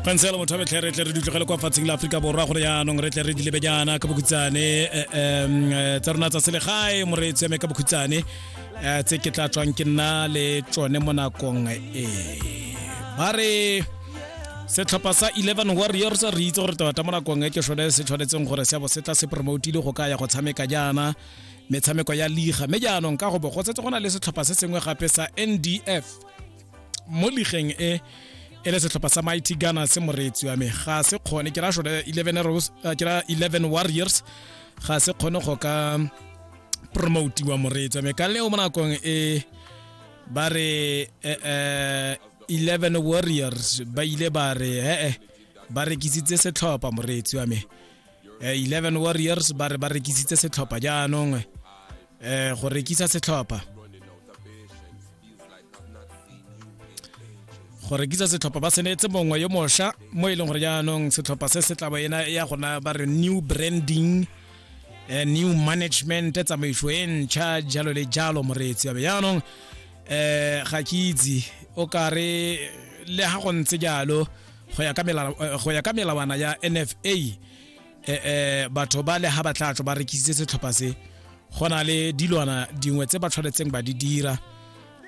kansela motho a betlhe re tle re dutlogele kwa fatseng la aforika borwa gore yaanong re tle re dilebe jaana ka bokhutsane eh, em, eh, tsa rona tsa selegae mo re tseme ka bokhutsane eh, tse ke tla tswang ke nna le tsone mo nakong e ba re setlhopha sa 11 warriors re itse gore tota mo nakong e ke sone se tshwanetseng gore seabo se tla se promotile go ka ya go tshameka jaana metshameko ya liga mme jaanong ka go bo go setse go na le setlhopha se sengwe gape sa ndf mo ligeng e e le setlhopha sa mighty ghana se moreetsi wa me ga se kgone ke ra sone 11 rose eh, ke ra 11 warriors ga se kgone go ka promotiwa moreetsi wa me ka leo mo nakong e ba re eh, eh, 11 warriors ba ile ba re ee ba rekisitse setlhopha moreetsi wa me 11 warriors ba re ba rekisitse setlhopha jaanong eh go rekisa setlhopha go rekisa setlhopha ba senetse mongwe yo mosha mo e leng gore jaanong setlhopha se se tlabo ena ya gona ba re new branding eh, new management tsamaiso e ntšha jalo le jalo moreetsi yabe jaanong eh ga ke itse o kare le ha go ntse jalo go ya ka melawana ya NFA eh, eh, batho ba le ga ba tlatso ba rekisitse setlhopha se go na le dilwana dingwe tse ba tshwanetseng ba di dira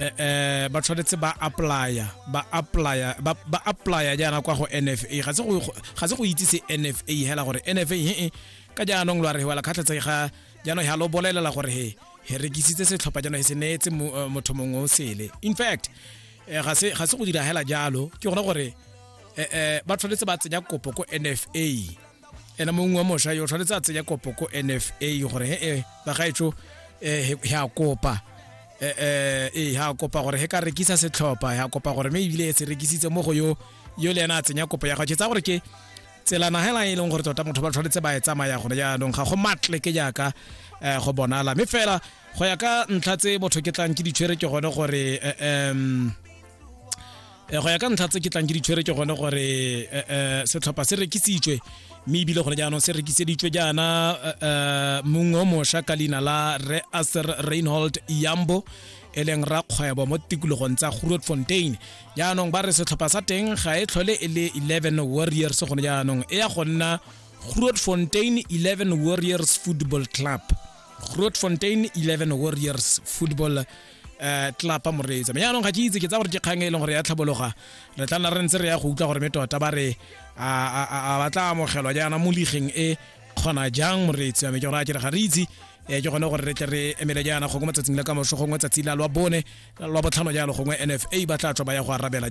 eh, eh, ba tshwanetse ba applya ba applya ba ba applya jaana kwa go nfa ga se go ga se go itse se nfa hela gore nfa he ka jaanong lwa re wela kgatlhetse ga jaanong ha lo bolelela gore he he rekisitse setlhopha jaanong he se neetse mo- eh, motho mongwe o sele in fact eh, ga se ga se go dira hela jalo ke gone gore eh, eh, ba tshwanetse ba tsenya kopo ko nfa ena mongwe wa mošwa yo tshwanetse a tsenya kopo ko nfa gore he eh, bagaetso um he a kopa ee ha kopa gore he ka rekisa setlhopha ya kopa gore me ebile se rekisitse mo go yo yo le ena a tsenya kopo ya gago tsa gore ke tselana hela e leng gore tota motho ba tshwanetse ba e tsamaya gone jaanong ga go matle ke jaaka um go bonala mme fela go ya ka ntlha tse motho ke tlang ke ditshwere ke gone gore um Eh, go ya ka ntlha tse ke tlang ke di tshwere ke gone gore eh, eh, setlhopha se rekisitswe mme ebile gone jaanong se rekiseditswe jaana mongwe o mošwa ka leina la re aser reinhold yambo e leng rakgwebo mo tikologong tsa groot fontain jaanong ba re setlhopha sa teng ga e tlhole e le 11 warriors gone jaanong e ya go nna groot fontain 11 warriors football club groot fontain 11 warriors football um tlapa moreetsa me jaanong ga ke itse ke tsa gore ke kgang e leng gore ya tlhabologa re tla nna re ntse re ya go utlwa gore me tota ba re a ba tla amogelwa jaana mo ligeng e kgona jang moreetsi wa me ke gore a kere ga re itse um ke gone gore re tle re emele jaana gongwe matsatsing la ka moso gongwe tsatsi la lwa bone lwa botlhano jalo gongwe nfa ba tla tswa ba ya go arabela